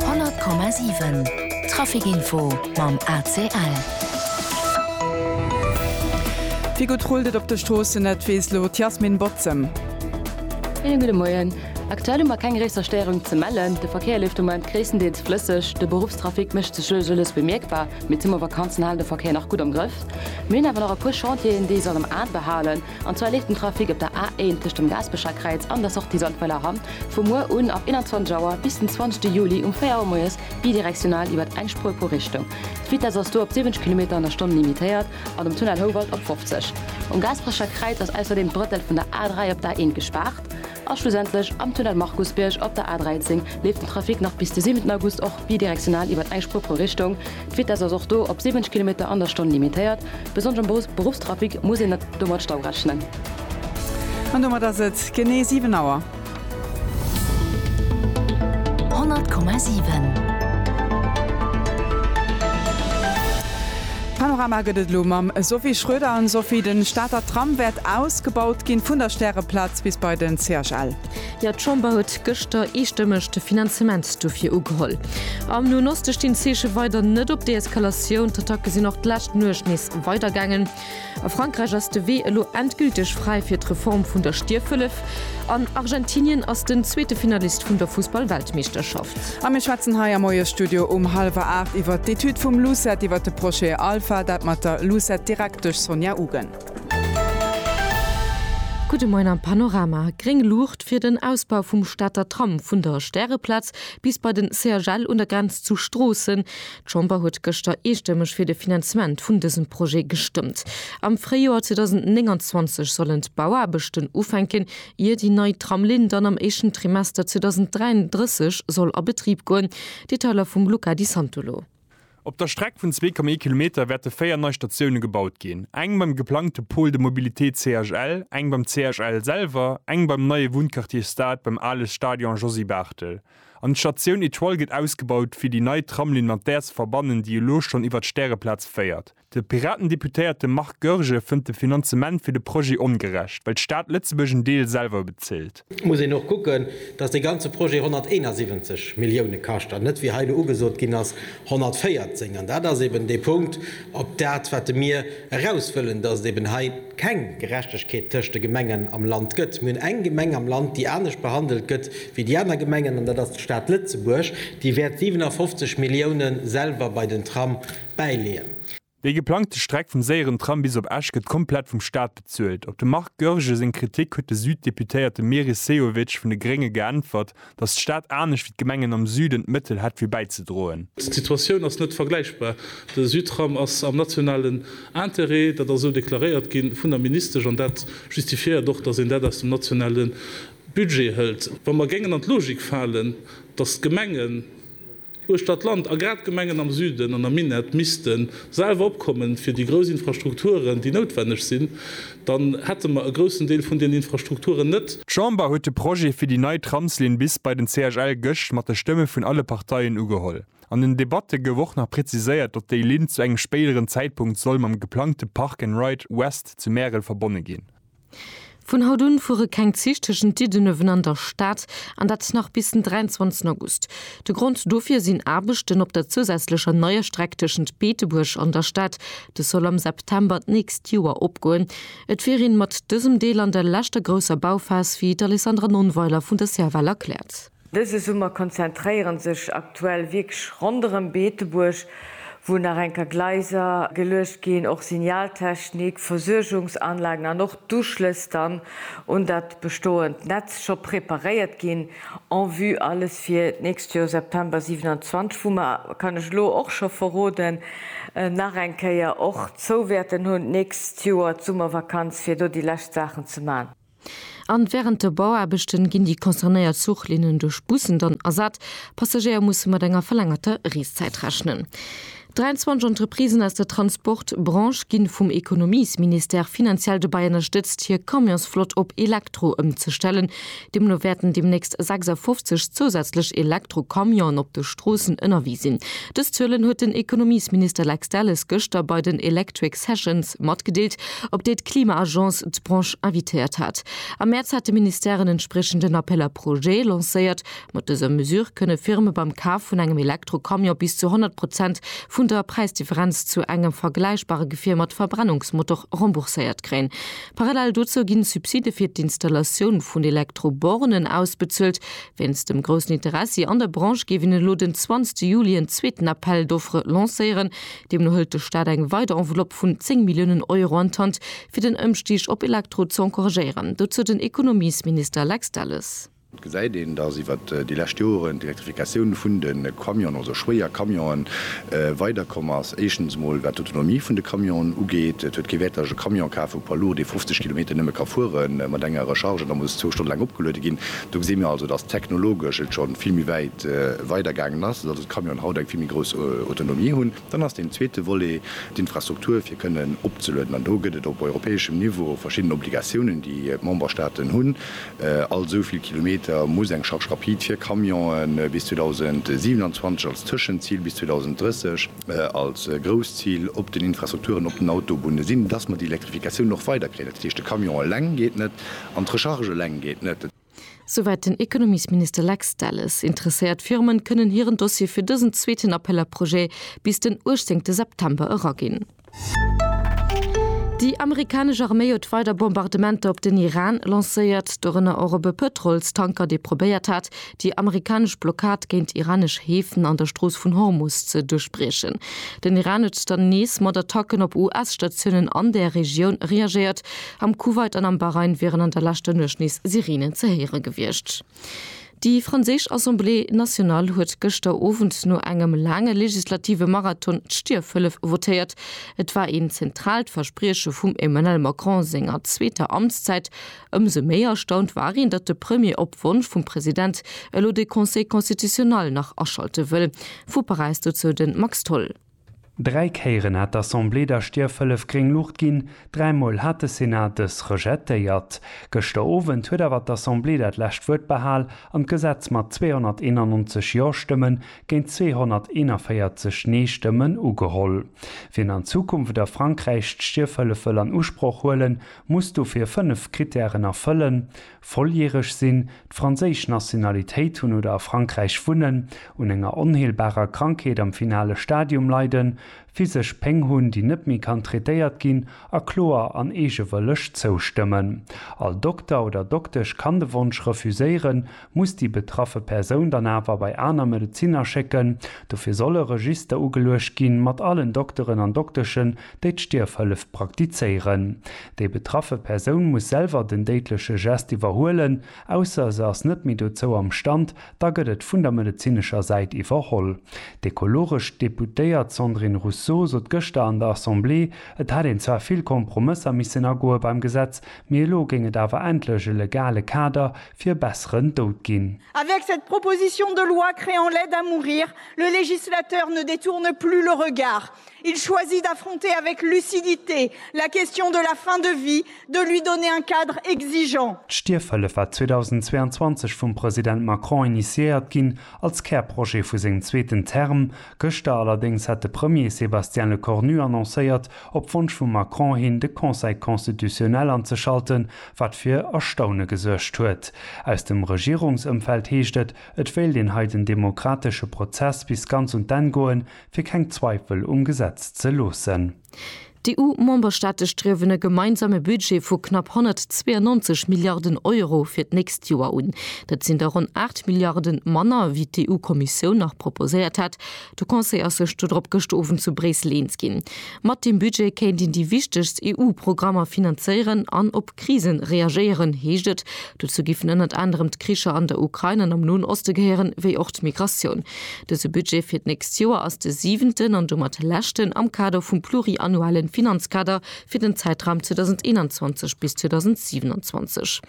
100,7 Trafikinfo mam ACL. Wéi gutt rullt et op de Stroossen, dat weess elo d'Yasmin Bozem. Schéine gudde Moien. Aktuell hu mer keng gréisser Stéierung ze mellen. De Verkéier leeft de Moment gréisstendeels flësseg. De Beruffstrafic mécht sech elo elo less bemierkbar, mee d'Summervakanzen halen de Verkéier nach gutt am Grëff. Mir hunn awer nach e puer Chantieren, déi ee soll am Ae behalen. An zwar leeft den Trafic op der A1 tëscht dem Gaaspecher Kräiz an der Sortie Sandweiler Hamm vu muer un ab 21 Auer bis den 20 Juli um 4 Auer moies bidirektional iwwert eng Spuer pro Richtung. D'Vitess ass do op 70 Kilometer an der Stonn limitéiert an um Tunnel Houwald op 50. Um Gaaspecher Kräiz ass ausserdeem d'Brëttel vun der A3 op der A1 gespaart. A schlussendlech am Tunnel Markusbierg op der A13 leeft den Trafic nach bis de 7 August och bidirektional iwwert eng Spur pro Richtung. D'Vitess ass och do op 70 Kilometer an der Stonn limitéiert. Besonnesch am Beruffstrafic muss een do mat Stau rechnen. An domat ass et genee 7 Auer. 100,7. Panorama gëtt et elo mam Sophie Schroeder. Sophie, de Stater Tram wäert ausgebaut ginn, vun der Stäreplaz Gesetz bis bei den CHL. Jo, d'Chamber huet gëschter eestëmmeg de Finanzement dofir ugeholl. Am Noen Oste stinn d'Zeeche weider net op Deeskalatioun. D'Attacke sinn och d'lescht Nuecht nees weidergaangen. A Frankräich ass de Wee elo endgülteg fräi fir d'Reform vun der Stierfhëllef. An Argentinien ass den zweete Finalist vun der Fussball-Weltmeeschterschaft. A mir schwätzen hei am Moiesstudio um hallwer aacht iwwert d'Etüd vum LUCET iwwert de Projet Alpha. Dat mat der LUCET-Direktesch Sonja Ugen. Gudde Moien am Panorama. Gréng Luucht fir den Ausbau vum Stater Tram vun der Stäreplaz bis bei den CHL un der Grenz zu Stroossen. D'Chamber huet gëschter eestëmmeg fir de Finanzement vun dësem Projet gestëmmt. Am Fréijoer 2029 sollen d'Bauaarbechten ufänken, ier déi nei Tramlinn dann am éischten Trimester 2033 soll a Betrib goen. Detailer vum Luca Di Santolo. Op der Streck vun 2,1 Kilometer wäerte véier nei Statioune gebaut ginn, eng beim geplangte Pôle de mobilité CHL, eng beim CHL selwer, eng beim neie Wunnquartier Stade beim ale Stadion Josy Barthel. An d'Statioun Etoile gëtt ausgebaut, fir déi nei Tramlinn mat där ze verbannen, déi elo schonn iwwer d'Stäreplaz féiert. De Piraten-Deputéierte Marc Goergen fënnt de Finanzement fir de Projet ongerecht, well d'Stad Lëtzebuerg en Deel selwer bezilt. Et muss een och kucken, datt dee ganze Projet 171 Millioune kascht an net, wéi hei elo ugesot ginn ass, 114. An dat ass eben dee Punkt, op dat wat de mir eraus wëllen, datt et eben hei keng Gerechtegkeet tëscht de Gemengen am Land gëtt. Mir hunn eng Gemeng am Land, déi anescht behandelt gëtt wéi déi aner Gemengen, an dat ass d'Stad Lëtzebuerg, déi wäert 57 Milliounen selwer bei den Tram, bäileeën. Déi geplangte Streck vum séieren Tram bis op Esch gëtt komplett vum Staat bezuelt. Op de Marc Goergen seng Kritik huet de Süd-Deputéierte Meris Sehovic vun de Grénge geäntwert, datt d'Stad anescht wéi d'Gemengen am Süden d'Mëttel hätt fir bäizedroen. D'Situatioun ass net vergläichbar. De Südtram ass am nationalen Interêt, dat ass esou deklaréiert gi vun der Ministesch an dat justifiéiert och, datt een dat aus dem nationale Budget hëlt. Wa mer géingen an d'Logik falen, datt d'Gemengen, Uechter d'Land, a grad d'Gemengen am Süden an am Minett, misste selwer opkommen fir déi grouss Infrastrukturen, déi noutwenneg sinn, dann hätte mer e groussen Deel vun den Infrastrukturen net. D'Chamber huet de Projet fir déi nei Tramslinn bis bei den CHL gëscht mat de Stëmme vun alle Parteien ugeholl. An den Debatte gouf och nach präziséiert, datt déi Linn zu engem spéideren Zäitpunkt soll mam geplangte Park and Ride West zu Märel verbonne ginn. Vun haut un fuere keng Zich tëschent Diddenuewen an der Stad, an dat nach bis den 23 August. De Grond dofir sinn Aarbechten op der zousätzlecher neier Streck tëschent Beetebuerg an der Stad. Dës soll am September d'nächst Joer opgoen. Et wier een mat dësem Deel an der leschter grousser Bauphas, wéi d'Alessandra Nonnweiler vun der Serval erkläert. Dëse Summer konzentréieren sech aktuell Wierkg ronderëm Beetebuerg, wou nach eng ka Gleiser geluecht ginn, och Signaltechnik, Versuergungsanlagen an och d'Uschlëss dann un dat bestoend Netz scho preparéiert ginn en vue alles fir d'nächst Joer September 27, wou mer, kann ech elo och scho verroden, nach eng Kéier och zou wäerten hunn d'nächst Joer d'Summervakanz, fir do déi lescht Saachen ze man. An während de Bauaarbechten ginn déi concernéiert Zuchlinnen duerch Bussen dann ersat. Passagéier mussen mat enger verlängerter Reeszäit rechnen. 23 Entreprisen aus der Transportbranche ginn vum Ekonomiesministère finanziell dobäi ënnerstëtzt hier Camionsflott op Elektro ëmzestellen. Deemno wäerten deemnächst 56 zousätzlech Elektrocamionen op de Stroossen ënnerwee sinn. Dës Zuelen huet den Ekonomiesminister Lex Delles gëschter bei den Electric Sessions matgedeelt. op déi d'Klima-Agence d'Branche invitéiert hat. Am Mäerz hat de Ministère en entspriechenden Appel à projets lancéiert. Mat dëser Mesure kënne Firme beim Kaf vun engem Elektro-Camion bis zu 100 Prozent vun der Präisdifferenz zu engem vergläichbare Gefier mat Verbrennungsmotor rembourséiert kréien. Parallel dozou ginn Subside fir d'Installatioun vun Elektro-Bornen ausbezuelt. Wéinst dem groussen Interessi an der Branche géif een elo den 20 Juli en zweeten Appel d'offres lancéieren, Deemno hëlt de Staat eng weider Enveloppe vun 10 Milliounen Euro an d'Hand, fir den Ëmstig op Elektro ze encouragéieren. Dozou den Ekonomiesminister Lex Delles. Et gesäit een, dass iwwer déi lescht Joren d'Elektrifikatioun vun de Camionen, also schwéier Camionen, weider komm ass. Éischtens emol, wat d'Autonomie vun de Camionen ugeet. Et huet kee Wäert, dass ech e Camion kafe vu Poids lourd, dee 50 Kilometer nëmme ka fuere mat enger Recharge an da muss zwou Stonne laang opgeluede ginn. Do gesi mir also, dass technologesch et scho vill méi wäit weidergaangen ass. Camionen haut eng vill méi grouss Autonomie hunn, dann ass deen zweete Volet d'Infrastruktur fir kënnen opzelueden. An do gëtt et op europäeschem Niveau verschidden Obligatiounen, déi d'Memberstaaten hunn. All esou vill Kilometer muss eng Charge rapide fir Camionen bis 2027 als Tëschenzil, bis 2030 als grousst Zil op den Infrastrukturen op den Autobunne sinn, dass mer déi Elektrifikatioun och weiderkréien. Dat heescht, de Camion eleng geet net an d'Recharge eleng geet net. Souwäit den Ekonomiesminister Lex Delles. Interesséiert Firmen kënnen hiren Dossier fir dësen zweeten Appel à projets bis den 18 September eraginn. Déi amerikanesch Arméi huet weider Bombardementer op den Iran lancéiert, dorënner och op e Pëtrolstanker, dee probéiert hat, déi amerikanesch Blockad géint iranesch Häfen an der Strooss vun Hormus ze duerchbriechen. Den Iran huet dann nees mat Attacken op US-Statiounen an där Regioun reagéiert. Am Kuwait an am Bahrain wieren an der leschter Nuecht nees Sireenen ze héiere gewiescht. Déi franséisch Assemblée nationale huet gëschter Owend no engem laange legislative Marathon d'Stierfhëllef votéiert. Et war een zentraalt Versprieche vum Emmanuel Macron senger zweeter Amtszäit. Ëmsou méi erstaunt war een, datt de Premier op Wonsch vum President elo de Conseil constitutionnel nach aschalte wëll. Vu Paräis dozou de Max Tholl. Dräi Kéieren hat d'Assemblée der Stierfhëllef gréng Luucht ginn, dräi Mol hat de Senat dës rejetéiert. Gëschter Owend huet awer d'Assemblée dat lescht Wuert behal an d'Gesetz mat 291 Jo-Stëmme géint 241 Nee-Stëmmen ugeholl. Wien an Zukunft a Frankräich d'Stierfhëllef wëll an Usproch huelen, muss dofir fënnef Krittären erfëllen, Volljäreg sinn, d'franséisch Nationalitéit hunn oder a Frankräich wunnen, un enger onheelbarer Krankheet am finale Stadium leiden, physesch Péng hunn, déi net méi kann traitéiert ginn, a kloer an eegewëlleg zoustëmmen. All Dokter oder Doktesch kann de Wonsch refuséieren, muss déi betraffe Persoun dann awer bei aner Medezinner schécken. Dofir soll e Register ugeluecht ginn, mat allen Dokteren an Dokteschen, déi d'Stierfhëllef praktizéieren. Déi betraffe Persoun muss selwer den déidleche Gest iwwerhuelen, ausser se ass net méi dozou am Stand, da gëtt et vun der medezinescher Säit iwwerholl. D'ekologesch Deputéiert Sandrine Rousseau sot gëschter an der Assemblée, et hätt een zwar vill Kompromësser missen agoe beim Gesetz, mee elo géing et awer endlech e legale Kader fir e besseren Doud ginn. Avec cette proposition de loi créant l'aide à mourir, le législateur ne détourne plus le regard. Il choisit d'affronter avec lucidité la question de la fin de vie, de lui donner un cadre exigeant. D'Stierfhëllef war 2022 vum President Macron initiéiert ginn, als Kärprojet vu sengem zweeten Term. Gëschter allerdéngs hat de Premier Sébastien Lecornu annoncéiert, op Wonsch vum Macron hin de Conseil constitutionnel anzeschalten, wat fir Erstaune gesuergt huet. Aus dem Regierungsëmfeld heescht et, et wéilt een hei den demokratesche Prozess bis ganz un d'Enn goen, fir keng Zweifel um Gesetz ze loossen. D'EU-Memberstaate striewen e gemeinsame Budget vu knapp 192 Milliarden Euro fir d'nächst Joer un. Dat sinn der ronn 8 Milliarde manner, wéi d'EU-Kommissioun nach proposéiert hat. De Conseil ass sech dodrop gëscht Owend zu Bréissel eens ginn. Mat deem Budget kéint een déi wichtegst EU-Programmer finanzéieren an op Krisen reagéieren, heescht et. Dozou giffen ënnert anerem d'Kricher an der Ukrain an am Noen Oste gehéieren, wéi och d'Migratioun. Dëse Budget fir d'nächst Joer ass de siwenten an domat leschten am Kader vum pluriannuelle Finanzkader fir den Zäitraum 2021 bis 2027.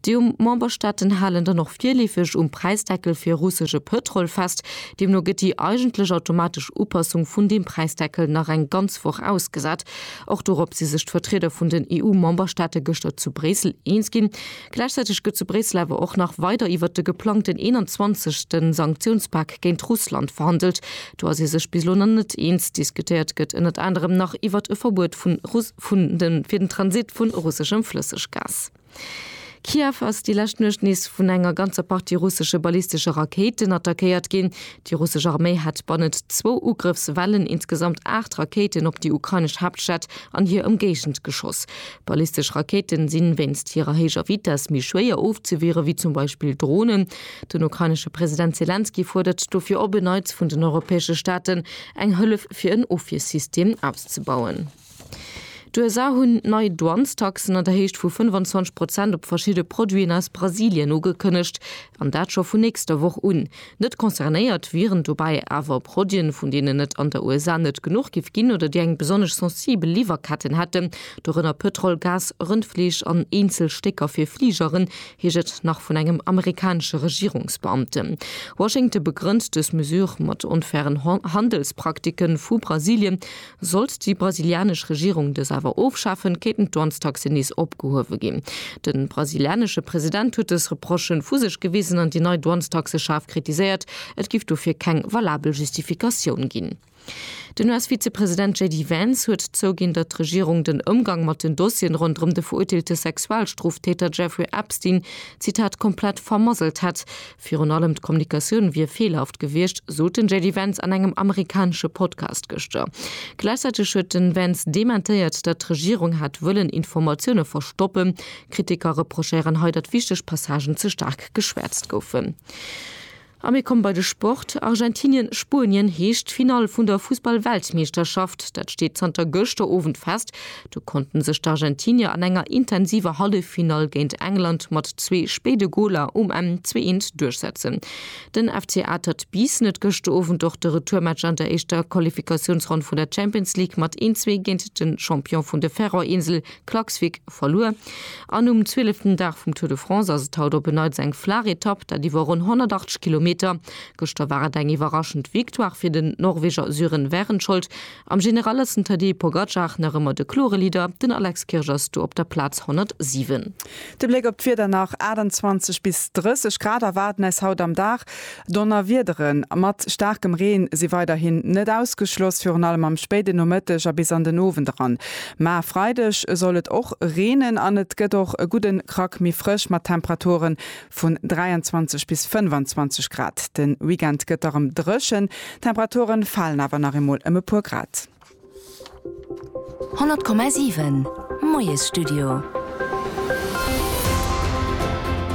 D'EU-Memberstaaten halen dann och virleefeg um Präisdeckel fir russesche Pëtrol fest. Deemno gëtt déi eigentlech automatesch Upassung vun deem Präisdeckel nach eng ganz Woch ausgesat. Och dorop si sech d'Vertrieder vun den EU-Memberstaate gëschter zu Bréissel eens ginn. Gläichzäiteg gëtt zu Bréissel awer och nach weider iwwert de geplangten 21. Sanktiounspak géint Russland verhandelt. Do ass ee sech bis elo nach net eens. Diskutéiert gëtt ënnert anerem nach iwwert e Verbuet vun Russ vun de fir den Transit vun russeschem Flësseggas. Kiew ass déi lescht Nuecht nees vun enger ganzer Partie russesche ballistesche Rakéiten attackéiert ginn. Déi russesch Arméi hat bannent zwou Ugrëffswellen insgesamt aacht Rakéiten op déi ukrainesch Haaptstad an hir Ëmgéigend geschoss. Ballistesch Rakéiten si wéinst hirer héijer Vitess méi schwéier ofzewiere wéi zum Beispill Dronen. Den ukrainesche President Selenskyj fuerdert dofir op en Neits vun den europäesche Staaten, eng Hëllef fir en Ofwiersystem auszebauen. D'USA hunn nei Douanestaxen an der Héicht vu 25 Prozent op verschidde Produiten aus Brasilien ugekënnegt, an dat scho vun nächster Woch un. Net concernéiert wieren dobäi awer Produiten, vun deenen et an der USA net genuch géif ginn oder déi eng besonnesch sensibel Liwwerketten hätten, dorënner Pëtrol, Gas, Rëndfleesch an eenzel Stécker fir Fligeren, heescht et nach vun engem amerikanesche Regierungsbeamten. Washington begrënnt dës Mesure mat onfairen Handelspraktiken vu Brasilien. Sollt déi brasilianesch Regierung dës awer ofschafen, kéinten d'Dwanztaxen nees opgehuewe ginn. De brasilianesche President huet dës Reprochen vu sech gewisen an déi nei Dwanztaxe schaarf kritiséiert, et giff dofir keng valabel Justifikatioun ginn. Den US-Vizepresident JD Vance huet zouginn, datt d'Regierung den Ëmgang mat den Dossieren ronderëm de verurteelte Sexualstroftäter Jeffrey Epstein, Zitat, komplett vermasselt hätt, Virun allem d'Kommunikatioun wier feelhaft gewiescht, sot den JD Vance an engem amerikanesche Podcast gëschter. Gläichzäiteg huet den Vance dementéiert, datt d'Regierung hätt wëllen Informatioune verstoppen. Kritiker reprochéieren hei, datt wichteg Passagen ze staark geschwäerzt goufen. A mir komme bei de Sport. Argentinien, Spuenien heescht d'Finall vun der Fussball-Weltmeeschterschaft. Dat steet zanter gëschter Owend fest. Do konnten sech d'Argentinier an enger intensiver Halleffinall géint England mat zwee spéide Goler um Enn 2-1 duerchsetzen. Den FC Atert Biissen huet gëschter Owend och de Retourmatch an der éischter Qualifikatiounsronn vun der Champions League mat 1-zwee géint de Champion vun de Färöerinsel Klaksvík verluer. An um zwieleften Dag vum Tour de France ass et haut op en Neits eng flaach Etapp, dat iwwer ronn 180 Kilometer. Gëschter war et eng iwwerraschend Victoire fir den Norweger Sören Wærenskjold. Am General ass den Tadej Pogacar nach ëmmer de klore Leader, den Alex Kirsch ass do op der Plaz 107. De Bléck op d'Wieder, Nach 28 bis 30 Grad erwaarden eis haut am Dag. Donnerwiedere mat staarkem Reen si weiderhin net ausgeschloss, virun allem am spéiden Nomëtteg a bis an den Owend eran. Mä Freideg soll et och reenen an et gëtt och e gudden Krack méi frësch mat Temperaturen vun 23 bis 25 Grad. De Weekend gëtt da rëm dréchen, d'Temperature falen awer nach eemol ëm e puer Grad. 100,7 Moiesstudio.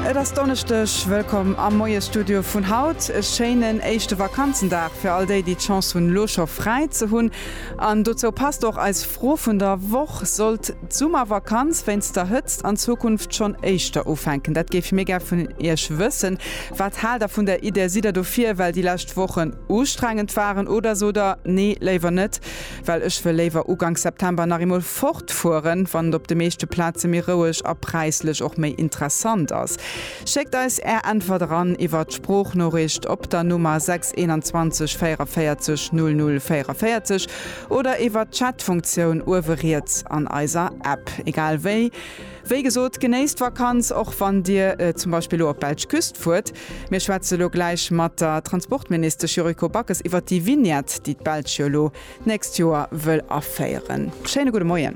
Et ass Donneschdeg, wëllkomm am Moiesstudio vun haut. E schéinen éischte Vakanzendag fir all déi, déi d'Chance hunn, elo scho fräi ze hunn. An dozou passt och eis Fro vun der Woch, Sollt. D'Summervakanz wéinst der Hëtzt an Zukunft schonn éischter ufänken? Dat géife mir gär vun Iech wëssen. Wat haalt der vun der Idee? Sidd der dofir, well déi lescht Wochen ustrengend waren oder sot der, Nee, léiwer net, well ech wëll léiwer Ugank September nach eemol fortfueren, wann et op de meeschte Plaze méi roueg a präislech och méi interessant ass? Schéckt eis Är Äntwert eran iwwer d'Sproochnooricht op der Nummer 6 21 44 00 44. Oder iwwert d'Chat-Funktioun uewe riets an eiser App. Egal wéi, wéi gesot, genéisst d'Vakanz, och wann Dir zum Beispill elo op d'belsch Küst fuert. Mir schwätze elo gläich mat der Transportministesch Yuriko Backes iwwert déi Vignette, déi d'Belsch jo elo d'nächst Joer wëll aféieren. Schéine gudde Moien.